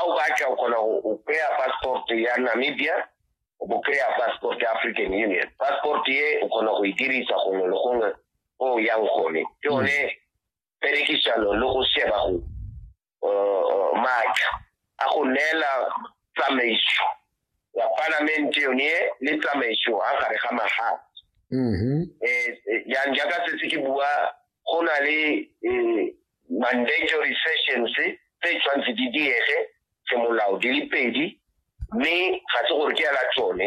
a o batla o kgona go kry-a passport ya namibia o bo kry-a passport ya african union passport ye o kgona go e dirisa gongwe le gongwe o yang gone ke mm. one perekisano le go sheba go uh, uh, maatla a go neela tsamaiso ya palamente yone le tsamaiso a gare ga mafatshe um mm-hmm. eh, eh, yang jaaka setse ke bua go na le eh, mandatory sessions tse tshwanetse di diege semolao di le pedi mme ga se gore ke ya la tsone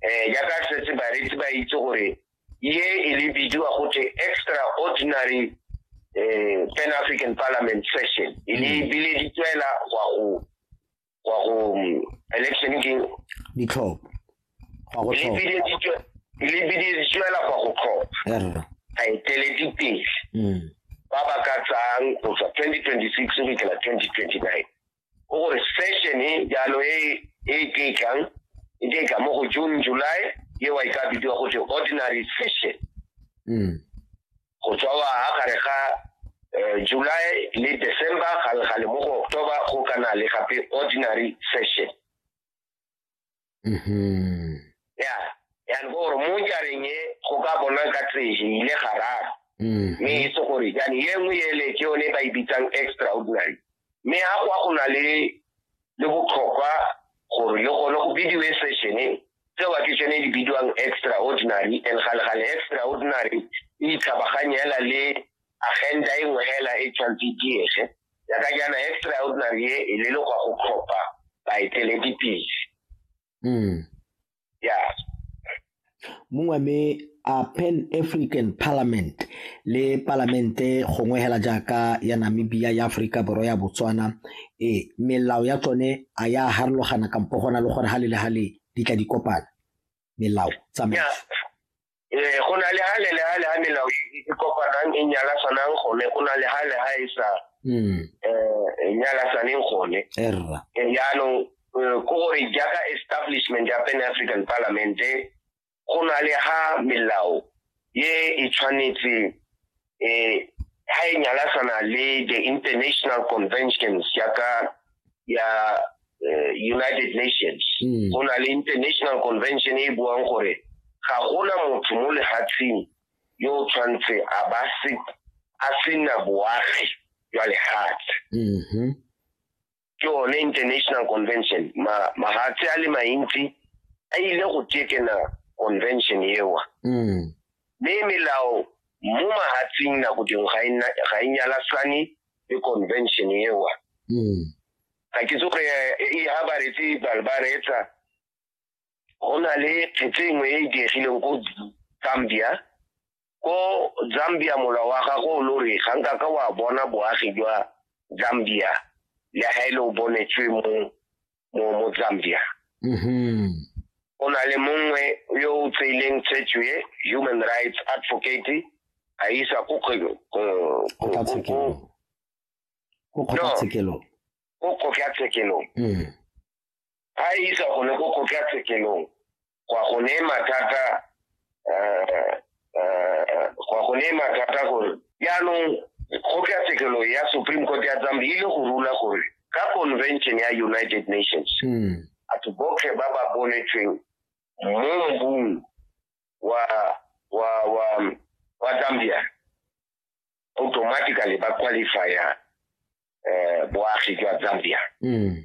um jaaka setse bareetsi ba itse gore ye e le bidiwa gote extraordinary um pan african parliament session e le mm. bile di tswela gwa go go ya go mm, election ke ditlhopho go ya go tlhopha lebile di tswe- lebile di tswela go ya go tlhopha Err. baeteledipele Mm. ba ba ka tsang go tswa 2026 go fitlhela 2029 go gore session e jalo e e ke tlang e ke tla mo go june july e wa e ka bidiwa go te ordinary session Mm. go tswa wa ha gare ga eh, july le december gale mo go october go kana le gape ordinary session mm-hmm. ya yan go gore mo jareng e go ka bona ka tseje ile gararo mm-hmm. mme e se gore jane ye nngwe ele ke yone ba e bitsang extraordinary mme ga go a go na le le botlhokwa gore le gone go bidiwe sešene tseo ke tsone di bidiwang extraordinary and galegale extraordinary e itlhabaganye hela le agenda e nngwe hela e tshwanetse e diege yaka jaana extraordinary e e lelekwa go tlhopha baeteledipele mm. yeah mongwe me a pan african parliament le palamente gongwe hela jaaka ya namibia ya aforika borwa ya botswana e melao ya tsone a ya harologana kampo gona le gore ga le le ga le di tla di kopana melao tsamaiso eh go na le hale le hale ha melao e kopanang e nyala sanang gone go na le hale ha e sa mm eh e nyala saneng gone erra e jaanong eh, ko gore jaaka establishment ya pan african parliament go na le ha melao ye e tshwanetse eh ha e nyalasana le the international conventions ya ka ya eh, united nations mm. go na le international convention e buang gore ga gona motho mo lehatsheng yo o tshwanetse a ba se a sena boagi jwa lehatshe mm-hmm. ke one international convention mahatshe a le mantsi a ile go tekena convention ewa mm. mme melao mo mahatsing nako dingwe ga e nyalasane le convention ewa mm. ga ke tsoge e ha ba retse bale ba reetsa go na le kgetse e nngwe e e diegileng ko zambia ko zambia mola wa gago o lo re ga nka ka wa bona boagi jwa zambia le ga e le o bonetswe mo mo mo zambia mm-hmm. o na le mongwe yo o tseileng tshetso e human rights advocate a isa ko kgotlatshekelo ko kgotlatshekelong mm. a isa gone ko kgotlatshekelong gwa go ne mathata eh, eh, gwa go ne mathata gore jaanong kgotlatshekelo ya supreme court ya zambi ile go rula gore ka convention ya united nations hmm. batho botlhe ba ba bonetsweng mo mbung wa wa wa wa zambia automatically ba qualifya eh, boagi jwa zambia mm.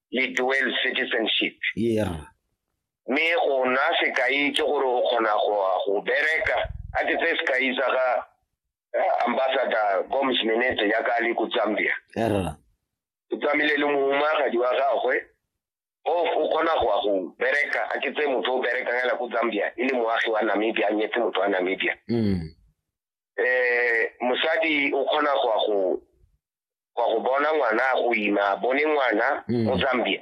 le dual citizenship yeah mme go nna sekai ke gore o kgona go bereka a ke tse sekai sa ga eh, ambassador gomes minete ya ka le ko zambia o tsamile le mohumaagadi wa gagwe o o kgona go go bereka a ke tse motho o berekang ela ko zambia e le moagi wa namibia a nyetse motho wa namibia um mm. eh, mosadi o kgona go go kwa go bona ngwana a go ima a bone ngwana mo zambia